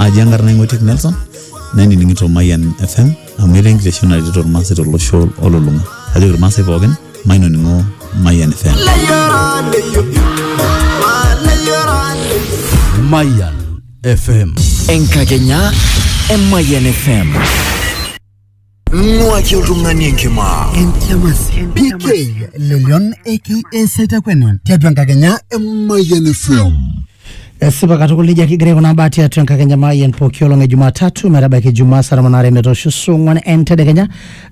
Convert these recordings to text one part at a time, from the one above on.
aji enkarna ing'otik nelson nainining'ito mayian fm amu etaa enkitesheni naretito irmaasai tolosho olulung'a ajoki irmaasai pookin mainoning'o mayian fm Mayan FM. Enkakenya e Mayan FM. Nuaki oltung'ani enkima. Enkiama sii. PK Lelion aka Setakwena tiatua enkakenya e Mayian FM. Esipa katukul nejia kigira aikunaa mbaa tiatua enkakenya Mayian pooki olong e Jumatatu metabaiki Ijumaa saa tomon aare metoosho saa ong'wan entedekenya.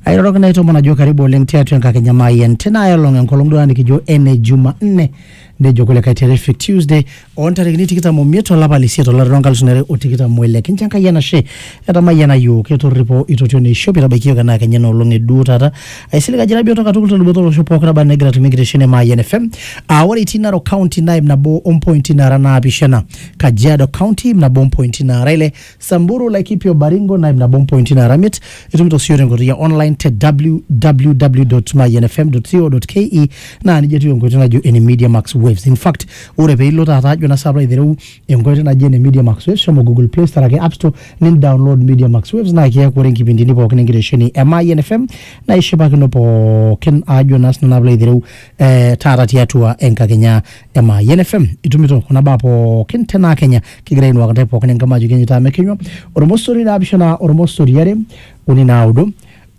Airoroki naitoomon ajo karibu oleng tiatua enkakenya Mayian tina ae olong enkolong duo taata nikijo ene Jumanne nejo kulikae terrific tuesday oontarikini tikitam omiet olapa lisiet olari loonkalusuni are o tikitam oile kincho enkai enashe etamayiana yiok etorripo itotio neishop itabaiki yiok enaa kenya enoolong eduo taata aisilig ajo ira bioto katukul teluboto olosho pooki naba enaa egira atumie enkitesheni e Mayian FM aa ore itii Narok County naa ip nabo ompointi naara naapishana Kajiado County ip nabo ompointi naara ile Samburu, Laikipio, Baringo, Naib na Bompointi na Aramit. Itumito sio tenkoitoi ya online te www.mayenfm.co.ke naa nijia etiu enkoitoi najo ene Media Max Waves. In fact, ore pee ilo taata ajo na saapa aitereu enkoitoi naji ene Media Max Waves, shomo Google Play Store ake App Store nin download Media Max Waves naa kiaku ore nkipindini pookin enkitesheni e Mayen FM naa ishipakino pookin ajo naa sinanu alo aitereu eh, taata tiatua enkakenya ema yen fm itumito kuna baa pookin tenaa kenya kigira ainuak ntae pookin enkima ajoki enyitaa mekinywa ormosori naapishana ormosori are uni naudo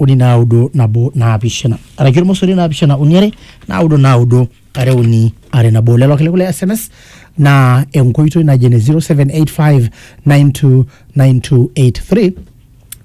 uni naudo nabo naapishana araki ormosori naapishana uni are naudo naudo are uni are nabo lelo kiliku le sms naa enkoitoi naji ene 0785929283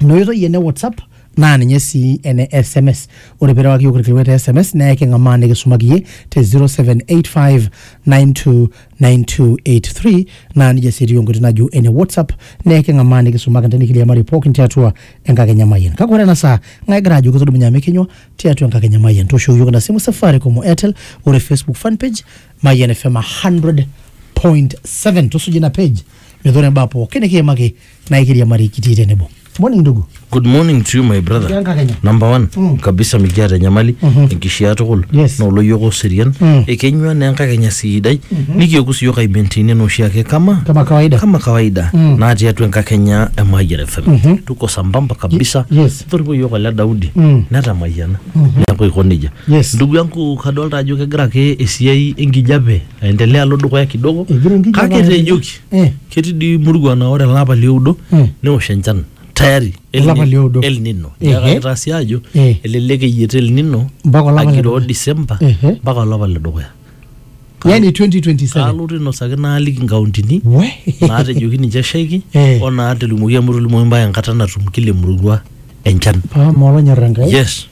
ina oitoi ene whatsapp naa ninye sii ene sms ore pirewaki yiok irkilikuai te sms naa eking'amaa nikisumaki iyie te 0785929283 naa nijia sii etiu enkoitoi najo ene whatsapp naa eking'amaa nikisumaki intae nikiriamari pookin tiatua enkakenya mayian kake ore ena saa ng'ae egira ajoki tudumunye amu ekinywa tiatua enkakenya mayian tooshoki yiok ina simu safaricom o airtel ore facebook fan page mayian fm 100.7 tusuja ina page metaa ore imbaa pookin nikiimaki na ikiriamari kitii tenebo morning ndugu good morning to you my brother Enkakenya. number one Mm. kabisa mikiata enyamali Mhm. enkishiaa tukul Yes. na oloyiok oserian Mm. ekenyua na enkakenya sidai nikioku siyiok aimentini enoshiake kama kama kawaida kama kawaida Mm. natii atua enkakenya e Mayian FM Mhm. tuko sambamba kabisa Ye- yes. toriko yiok ole Daudi Mm. netamayiana neaku aiko nejia Yes. ndugu yangu kadolta ajo kegira ake esiai enkijape aendelea alo dukuya kidogo Egira enkijape kake aendelea. tejoki Mm. ketii dii murua naa ore elapa lioudo Mm. neosh enchan tayari El Olapa Nino- lioudo. El Nino Ehe. neeku kaitaa sii ajo Eh. elelek eyiet El Nino Mpaka olapa le agiroo dukuya. December Ehe. mpaka olapa le dukuya yani 2027 kaalotu ainosaki naaliki nkauntini we naatejoki ninche eshaiki Eh. o naatolimuoki amu etolimuoki mbaa enkata natum kila emurua enchan paa molonyor enkai yes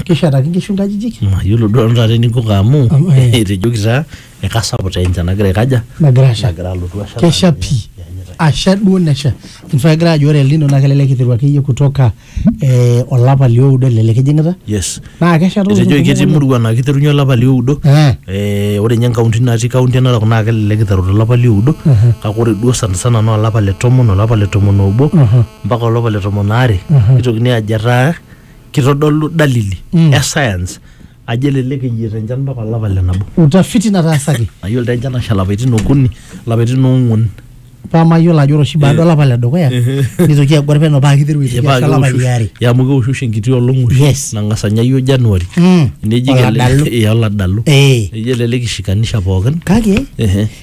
Kishetaki nkishu nkajijik. mayiolo duo nanu taata eninko amu Am- eh. etejoki taa ekasapuk taa enchan nagira aikaja Nagira asha. nagira alotu asha Kesha naa pii. ianyita. Asha duo nesha. In fact egira ajo ore El Nino naa kelelek iteru akeyie kutoka eh, olapa lioudo elelek ejing'ita. yes Naa kesha too etejoki ketii nkolong'i murua naa kiterunye olapa lioudo Eh. Eh, ore ninye nkaunti natii kaunti enarok naa kelelek iteru tolapa lioudo kake ore duo sanisana naa olapa le tomon olapa le tomon obo mpaka olapa le tomon aare nitokini ajo etaa kitodolu dalili mm. e science ajo elelek eyieta enchan mpaka olapa le nabo. utafiti nataasaki. mayiolo taa enchan asha lapaitin okuni lapaitin oong'uan. paa mayiolo ajo ore baada olapa le dukuya nitoki agor peno paa kiteru aitoki asha olapa liare. yaa amu keoshusho enkiti olong oshi. yes nang'as anya iyiook januari. neji kelelek oladalu. neji elelek ishikanisha pookin. kake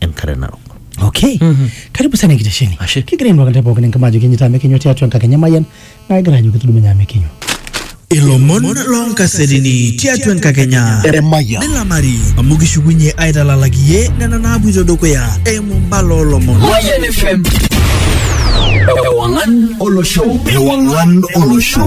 enkare narok okay karibu sana enkitesheni Ashe. kigira ainuaka ntae pookin enkima ajo kinyita amu ekinywa tiatua enkakenya mayian naa kigira ajo kitudumunye amu ekinywa ilomon loonkasetini tiatua enkakenya Emayian. nilamari amu kishukunye aitalalak iye nena naapuito dukuya eimu mbala olomon Mayan FM. Ewangan Olosho. Ewang'an olosho.